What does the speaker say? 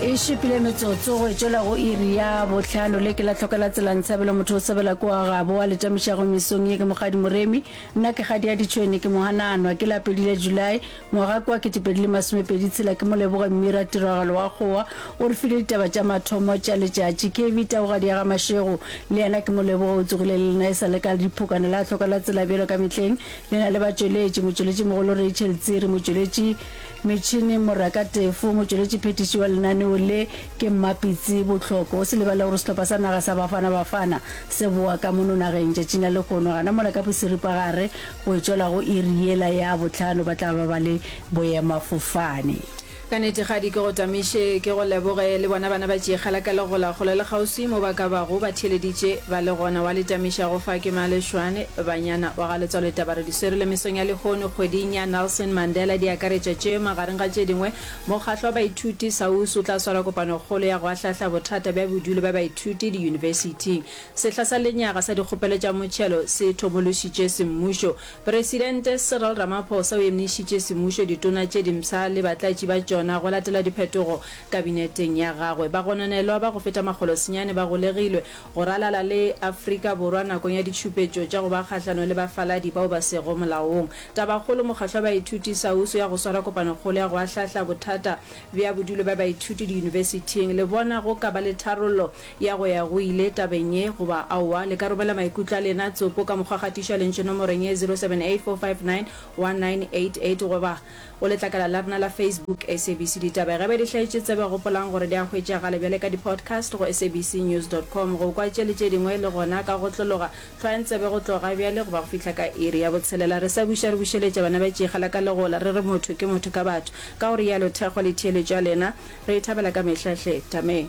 e šupile metsotso go etšela go iri ya bohlano le ke la tlhokela tselang tshabelo motho o sebela ko a gabo a letamišago mesong ye ke mogadi moremi nna ke gadi ya ditšhwene ke mogananwa ke la pedile july ngwaga kwa ketepedi le masomepedi tshela ke mo leboge mmira tiragalo wa kgowa o re file ditaba tša mathomo tša letšatši kv tagogadi ya ga mašego le yena ke mo leboge o tsogile le lena e sa le ka diphokane la tlhokela tsela bjalo ka mehleng le na le batšweletši motšweletši mogolo rachel tsiri motšweletši Metšhini, Morra ka Tefo, motšweletšiphethiši wa lenaneo le, ke Mmapitsi Bohloko. O se lebale gore sehlopha sa naga sa Bafana Bafana se bowa ka mono nageng tšatšing la lehono. Gana mola ka boseripagare go e tšwela go iri yela ya bohlano ba tla ba ba le boemafofane. Ka nete Kgadi ke go tamiše ke go leboge le bona bana ba Tšeikgala ka Legola kgole le kgauswi mo ba ka bago ba theeleditše ba le gona wa le tamiša go fa ke Male Shwane banyana wa ga Letswalo Tabare Serile mesong ya lehono kgweding ya Nelson Mandela di akaretša tše magareng ga tše dingwe, Mokgahlo wa Baithuti, SAUS, o tla swara kopanokgolo ya go ahlahla bothata bja bodulo bja baithuti diyunibesiting. Sehla sa lenyaga sa dikgopelo tša motšhelo se thomološitše semmušo. Presidente Cyril Ramaphosa o emišitše semmušo ditona tše dimpsha le batlatši ba tšona go latela diphetogo kabineteng ya gagwe. Bagononelwa ba go feta makgolo senyane ba golegilwe Go ralala le Afrika Borwa nakong ya ditšhupetšo tša go ba kgahlanong le bafaladi bao ba sego molaong. Tabakgolo, Mokgatlo wa Baithuti Sausu ya go swara kopanokgolo ya go ahlahla bothata bja bodulo bja baithuti diyunibesithing. Le bona go ka ba le tharollo ya go ya go ile tabeng ye goba aowa? Le ka romela maikutlo a lena, tsopo, ka mokgwa wa kgatišo ya lentšu nomorong ye 0784591988 goba. Go letlakala la rena la Facebook, SABC Ditaba, ge ba di hlaetše tsebe, gopolang gore di a hwetšagale bjale ka di-podcast go sabcnews dot com. Go kwa tše le tše dingwe le gona ka go tlologa, hlwayang tsebe go tloga bjale go ba go fihla ka iri ya botshelela. Re sa buša re bušeletša bana ba tšikgala ka legola, re re motho ke motho ka batho, ka go realo thekgo le theeletšo ya lena re e thabela ka mehla hle. Tameng.